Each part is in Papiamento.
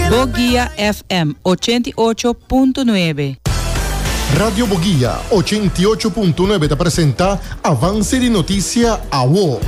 Boguia FM ochenta i ocho punto nuebe. Radio Boguia ochenta i ocho punto nuebe ta presenta Avance di Noticia Awo.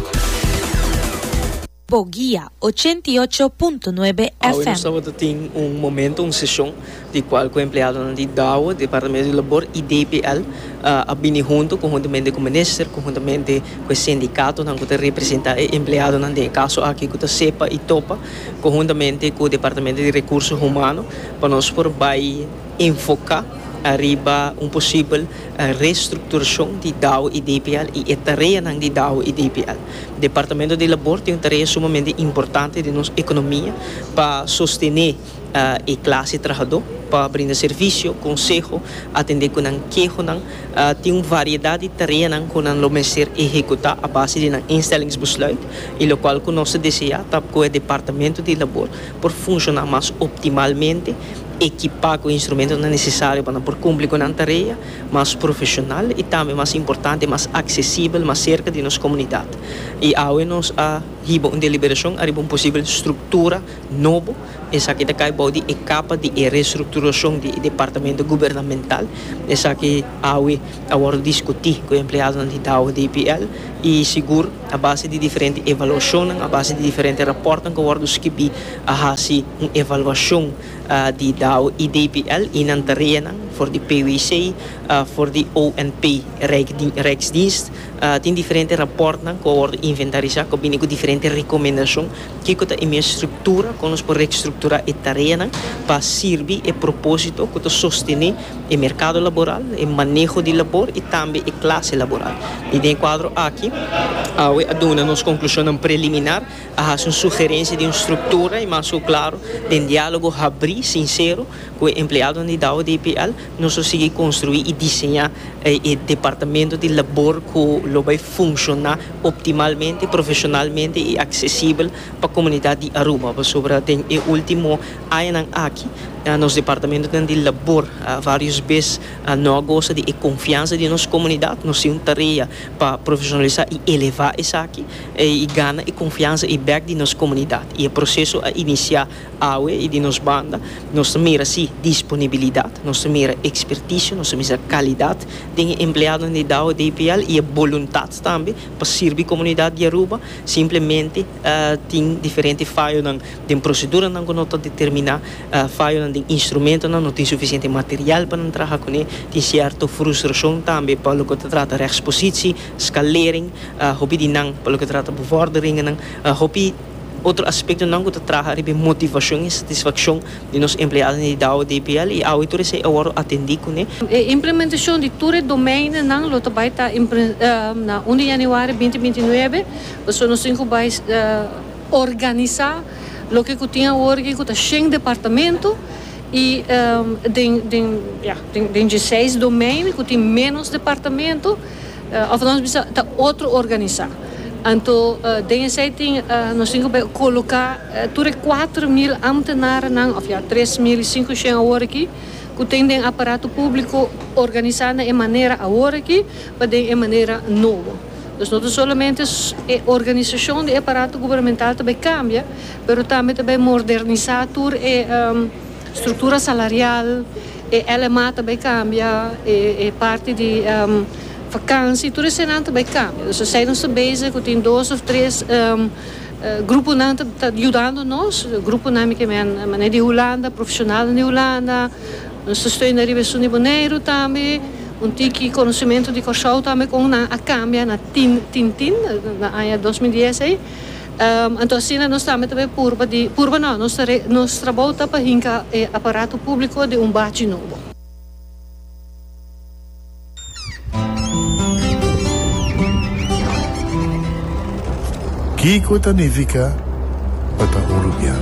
Boguia ochenta i ocho punto nuebe Awe nos FM. tabata tin un momento, un sesion, di cual cu empleadonan di DAWO, Departamento di Labor, y DPL a bini hunto conhuntamente cu Minister, conhuntamente cu e sindicatonan cu ta representa e empleadonan den e caso aki cu ta sepa y topa conjuntamente cu Departamento di Recurso Humano pa nos por bay enfoca ariba un posibel restructuracion di Dow y DPL y e tareanan di Dow y DPL. Departamento di Labor tin un tarea sumamente importante den nos economia pa sostene e clase trahador, pa brinda servicio, conseho, atende cu nan kehonan. Tin un variedad di tareanan cu nan lo mester ehecuta a base di nan instellingsbesluit. y locual cu nos ta desea ta cu e Departamento di Labor por funciona mas optimalmente, ekipa cu e instrumentonan necesario pa nan por cumpli cu nan tarea mas profesional y tambe mas importante mas accesibel, mas cerca di nos comunidad. Y awe nos a hiba un deliberacion ariba un posibel structura. nobo, esaki ta kai bou di e kapa di e restrukturashon di e departamento gubernamental, esaki awe a wòrdu diskutí ku e empleadonan di Dow DPL i sigur a base di diferente evaluashonnan, a base di diferente rapòrtnan ku a wòrdu skibí a hasi un evaluashon di Dow i DPL i nan tareanan for di PWC, for di ONP Rijksdienst tin diferente rapòrtnan ku a wòrdu inventarisá ku a bini ku diferente rekomendashon. Kiko ta e mihua struktura kon nos por rekstrukturá e tareanan pa sirbi e propósito ku ta sostené e merkado laboral, e maneho di labor i tambe e klase laboral? I den e kuadro aki, awe a duna nos konklushonnan preliminar, a hasi un sugerensia di un struktura i mas ku klaru den diálogo habrí, sinsero, ku e empleadonan di Douwe DPL, Nos lo sigui konstruí i diseñá e departamento di labor ku lo bai funshoná optimalmente, profeshonalmente i aksesibel pa komunidat di Aruba. Pasobra den e último añanan aki nos departamentonan di labor vários bes no a gosa di e konfiansa di nos komunidat. Nos tin un tarea pa profeshonalisá i elevá esaki i gana e konfiansa i bèk di nos komunidat. I e proseso a inisiá. Awe y di nos banda nos ta mira si disponibilidad, nos ta mira experticio, nos ta mira calidad den e empleadonan di Dow DPL y e boluntad tambe pa sirbi comunidad di Aruba, simplemente tin diferente fayonan den proceduranan cu no ta determina, fayonan den instrumentonan, no tin suficiente material pa nan traha cune, tin cierto frustracion tambe pa loke ta trata rechtspositie, scalering, hopi di nan pa loke ta trata bevorderingennan, hopi. Otro aspektonan ku ta traha riba e motivashon i satisfakshon di nos empleadonan di Dow DPL i awe tur esei a wòrdu atendí kuné. E implementashon di tur e domeinonan lo ta bai ta na un di yanüari binti binti nuebe, pasobra nos tin ku bai organisá loke ku tin awor aki ku ta shen departamento i den den den dje seis domein ku tin ménos departamento. Of nos bisa ta otro organisá. Anto den esei tin nos tin ke koloká tur e kuater mil ámtenarnan, òf ya tres mil i sinku shen awor aki, ku ten den aparato públiko organisá na e manera awor aki pa den e manera nobo. Dus no ta solamente e organisashon di e aparato gubernamental ta bai kambia, pero tambe ta bai mordernisá tur e. Structura salarial, e LMA ta bay cambia, e parti di vakantie, tur esenan ta bay cambia. Dus esey nos ta bezig cu tin dos of tres gruponan ta yudando nos. Gruponan mi ke men manera di Hulanda, profesionalnan di Hulanda. Nos ta steuna riba esun di Boneiru tambe. Un tiki conocimento di Corsou tambe con nan a cambia na tin tin tin na aña dos mil dies ey. Anto asina nos tambe ta bay purba di, purba no, nos ta re, nos trabou ta pa hinca e aparato publico den un bachi nobo. Kico ta nifica pa ta un rubian?